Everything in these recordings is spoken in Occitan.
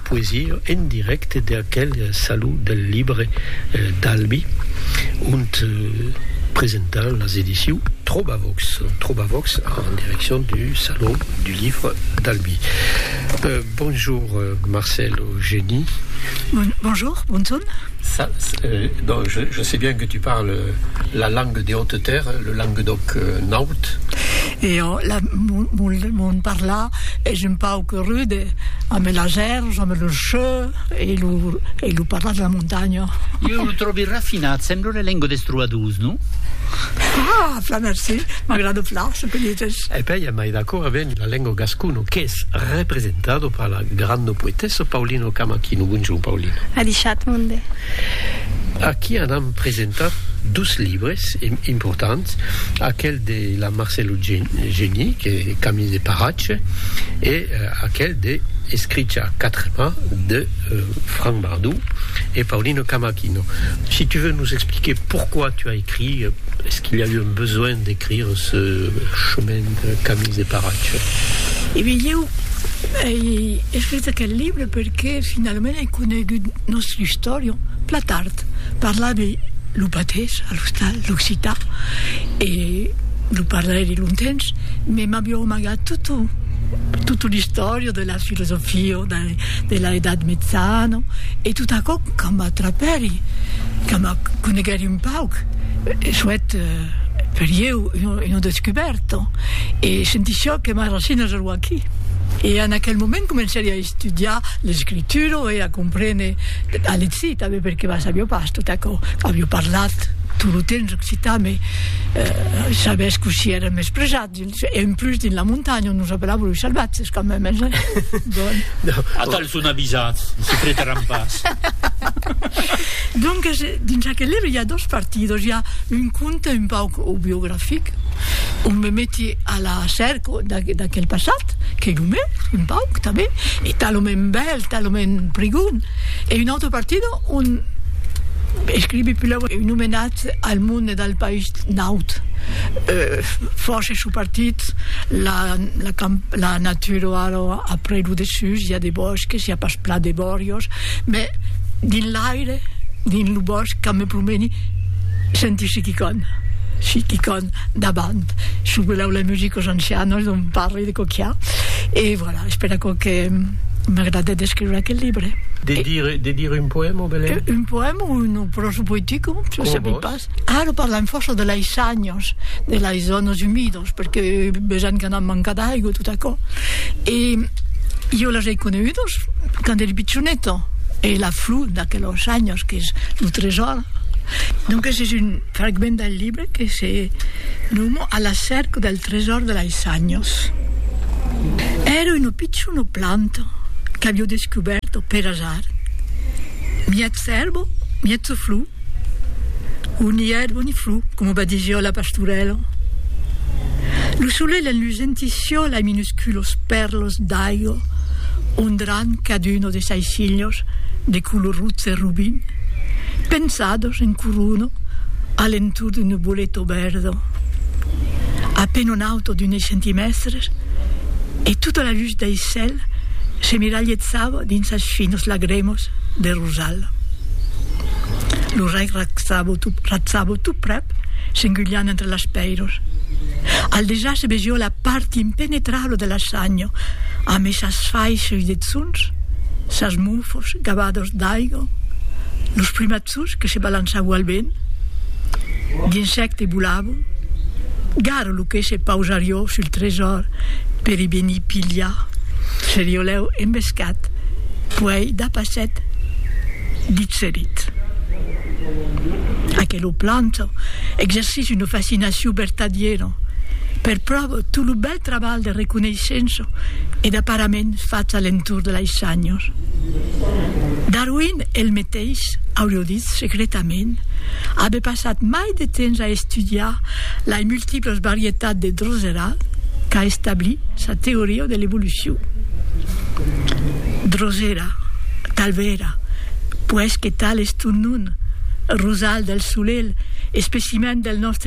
Poesia en dirècte de aquel Salon del Libre d'Albi, ont presentan las ediciu Trobavox, Trobavox en direccion du Salon du Livre d'Albi. Bonjour Marcèle Eugeni. Bonjour, bonson. Ça, donc je sais bien que tu parles la langue des hautes terres, le languedoc naut. E ò, la, mon, mon, mon parlar es un pauc Que rude, ame la Serge, ame lo cheu e lo e lo parlar de la montanha. Ieu lo tròbi rafinat, sembla una lenga des trobadors, non? Ah! Plan merci, m'agrada plan ce que dites. E pèi ja mai d'acò aven la lenga gascona qu'es representado per la granda poetessa Paulina Camachino. Bonjour Paulina. Adishat monde. Aquí anam presentar dos libres importants, aquel. de la Marcelo Geni, que Camille de Paratge, e aquel de Escricha a quatre mans de Franck Bardou e Paulino Camacchino. Si tu veux nous expliquer pourquoi tu as écrit, est-ce qu'il y a eu un besoin d'écrire ce chemin de Camille de Paratge? E ben, ieu ei escrich aquel libre perque finalament ei conegut nòstre istorian plan tard. Parlavi lo patés, a l'ostal, l'occitan, e lo parlairi lontens, me m'avió amagat tota, tota l'istòria de la filosofia de, de la Edat Metzana, e tot aquò que m'atrapèri, que me coneguèri un pauc, soèt per ieu una, una descubèrta, e sentissiá que mai racina ero aquí. E en aquel moment comencèri a. estudiar l'escritura e a comprene, a lexir tanben perque va sabio pas tot aquò, avio parlat tot lo temps occitan me eh, sabés cossí èra mespresat dins, e en plus dins la montanha nos apelavan los salvatges quand même hein, bon. Atal son avisats, se pretaràn pas. Donc dins aquel libre i a dos partidos, i a un conte un pauc autobiografic on me meti a la cèrca, d'aquel passat, qu'ei lo meu, un pauc, tanben, e talament bèl, talament prigon, e un autre partido ont escrivi pulau un omenatz al monde e dal país naut, fòrça su partit, la la natura o ara a prei lo dessús i a de bòsques, i a pas plan de bòrios, mès dins l'aire, dins lo bòsc, quand me promeni, Sentishi qui con, si qui con davant, su que l'aula music os ancianos dont parli de coquiá. E voilà, espèra aquò que m'agrade d'escriure aquel libre. De dire, de dire un poèma, Belén? Un poèma o un prosa poetica, se sabi pas. Ara parlam fòrça de lei sanhos, de lei zònas umidas, perque besenh que n'an manca d'aigo, tot aquò. E jo les ei conegudas quand eri pichoneta, e la flor d'aquelos sanhos qu'es lo tresòr. Donques es un fragment del libre que se noma A la cèrca del tresòr de lais anhos. Èra una pichona planta qu'avió descubèrta per asar, miètz èrba, miètza flor, o ni èrba ni flor, coma va disir la pastorèla. Lo solelh enlusenti sió lais minusculos pèrlas d'aiga ondrant caduna de sais hilhos. de color rotz e robin, pensados en corona a l'entorn d'un nuboleto verda, a peine un auto d'unes centimèstres, e tota la lutz dei cèl s'emiralhetzava dins sas finas lagrèmas de rosal. Lo rei ratzava tot, ratzava tot prèp, s'engulhant entre las pèiras. Al dejà se vesió la. part impenetrabla de la sanha, amb esas faisses de tzons, sas mofos gavados d'aiga, los primatzos que se balançavon al vent, d'insècte volava, gara lo que se pausarió sul tresòr per i venir pilhar, serió lèu embescat, puèi dapasset, ditserit. Aquela planta exercís una fascinacion vertadiera. Per pròvo, tot lo bèl trabalh de reconeishença e d'aparament fach a l'entorn de lais shanhos. Darwin el meteis, aurió ditz secretament, abe passat mai de temps a estudiar lais multiplas varietats de drosera qu'a establir sa teoria de l'evolucion. Drosera, talvèra, puèi que tal es ton nom, rosal del solelh, especimèn del nòstre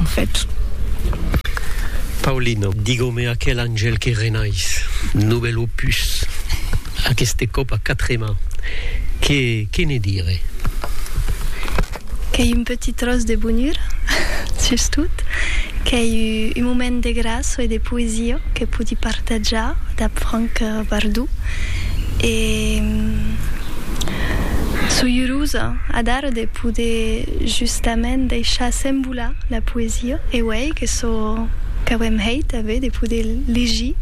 En fèt. Paulino, digó-me aquel angèl que renais, novèl opus, aqueste còp a quatre mans, que, que ne dire? Qu'ei un petit tròç de bonura, sustot, qu'ei un moment de gràça e de poesia que podi partatjar dab Franck Bardou e soi urosa adara de poder Justament deishar s'embolar la poesia, e uèi que çò qu'auem hèit avé de poder legir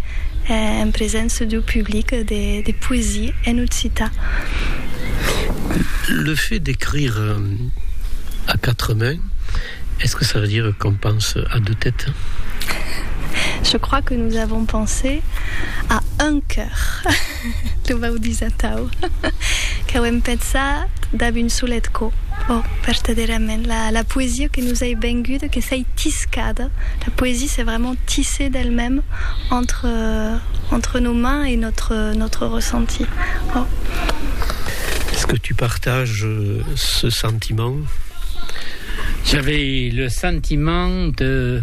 en presença deu public de poesia en occitan. Le fait d'écrire à quatre mains, est-ce que ça veut dire qu'on pense à deux têtes? Je crois que nous avons pensé à un cœur. Tu vau dus atau, qu'auem pensat dab un solet cop. Ò, vertadèrament, la poesia que nos ei venguda, que s'ei tiscada, la poesia s'est vraiment tissée d'elle-même entre, entre nos mains et notre, notre ressenti. Ò. Est-ce que tu partages ce sentiment? J'avais le sentiment de.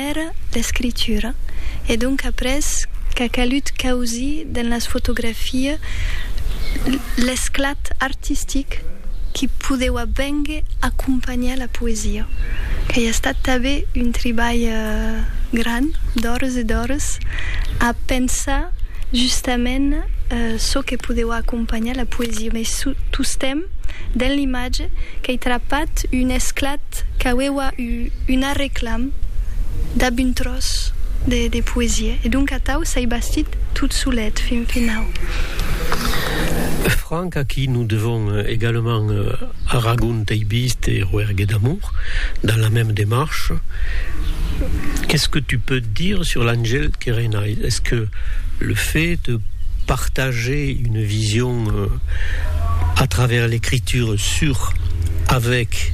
Era l'escritura, e donc après qu'a calut causir dens las fotografias l'esclat artistic qui podeua bénher acompanhar la poesia, qu'ei estat tanben un tribalh grand d'ores e d'ores a pensar justament çò que podeua acompanhar la poesia, mès tostemps dens l'imatge qu'ei trapat un esclat qu'aueua Una reclam dab un tròç de poesia. E donc atau s'ai bastit tot solet fin finau. Franck, a qui nous devons également Aragon teibiste et Rouergue d'amour, dans la même démarche, qu'est-ce que tu peux dire sur l'Angel que renais? Est-ce que le fait de partager une vision à travers l'écriture sur, avec,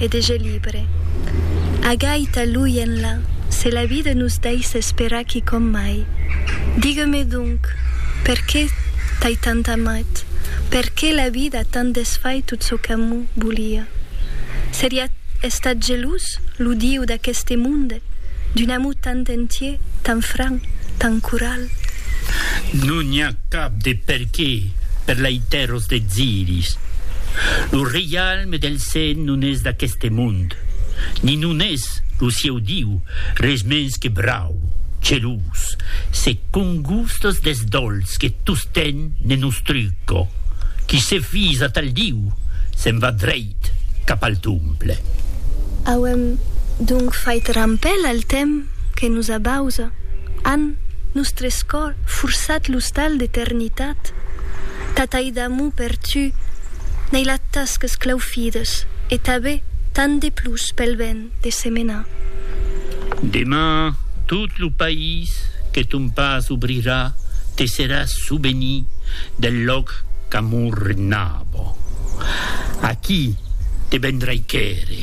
e de je libre. A gaita lui enlà, se la vida nos daissa esperar quicòm mai. Digue-me donc, perqué t'ai tant amat? Perqué la vida a tant desfait tot çò qu'amor volia? Seriá estat gelós lo Dieu d'aqueste monde d'un amor tant entier, tant franc, tant coral? Non n'i a cap de perqué per l'aitéro D'Eziris. Lo reialme del Sen non es d'aqueste mond, ni non es lo sieu Diu, res mens que brau, gelós, se congustas deth dolç que tostemp ne nostruco. Qui se fís atal Diu, se'n va dreit cap al Tomple. Auem donc fait rampèl al temps que nos abausa, an, nostres cors, forçat l'ostal d'eternitat. Tataí d'amor per tu, n'ei la tas que 's claufides, e tabé tant de plus pel ben de se menar. Deman tot lo país que ton pas obrirà te serà souvenir del lòc qu'amor regnava. Aquí te vendrai quèrre.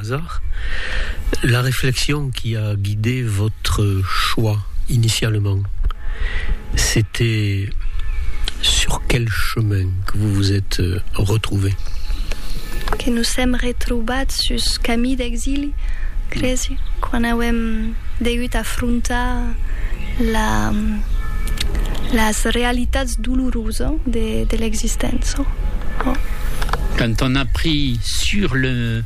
hasard, la réflexion qui a guidé votre choix initialement, c'était sur quel chemin que vous vous êtes retrouvé? Que nos èm retrobats sus camí d'exili, cresi, quan auem degut afrontar la, las realitats dolorosa de, de l'existença. Quand on a pris sur le.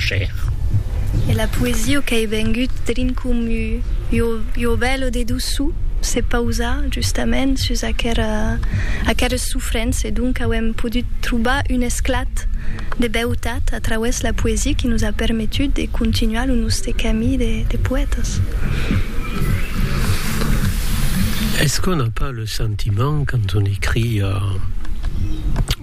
Chèr. E la poesia qu'ei vengut drin com ua bèla de doçu se pausa justament sus aqueres sofrents e donc auem podut trobar un esclat de beutat a trauès la poesia qui nos a permetut de continuar lo noste camí de poètas. Es qu'on a pas le sentiment quand on écrit.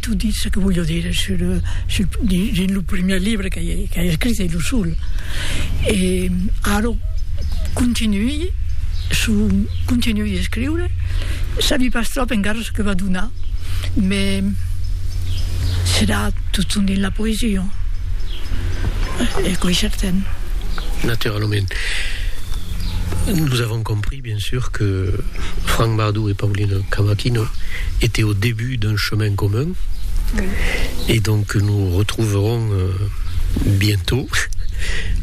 Tu dis ce que voglio dire sul, sul, dins lo primièr libre que hai, que hai escrit, e lo sol. E ara continuï, su, continuï escriure, sabi pas tròp encara ce que va donar, me serà totun dins la poesia, e quò es certen. Naturalament. Nous avons compris. Bien sûr que Franck Bardou et Paulina Cavaquinho étaient au début d'un chemin commun et donc que nous retrouverons bientôt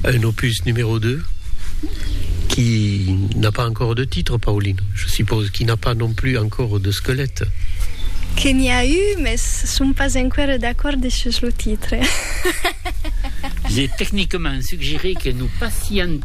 un opus numéro 2 qui n'a pas encore de titre, Paulina, je suppose, qui n'a pas non plus encore de squelette. Que n'i a eu, mès som pas enqüèra d'acord sus lo titre. Je techniquement suggerer que nous passions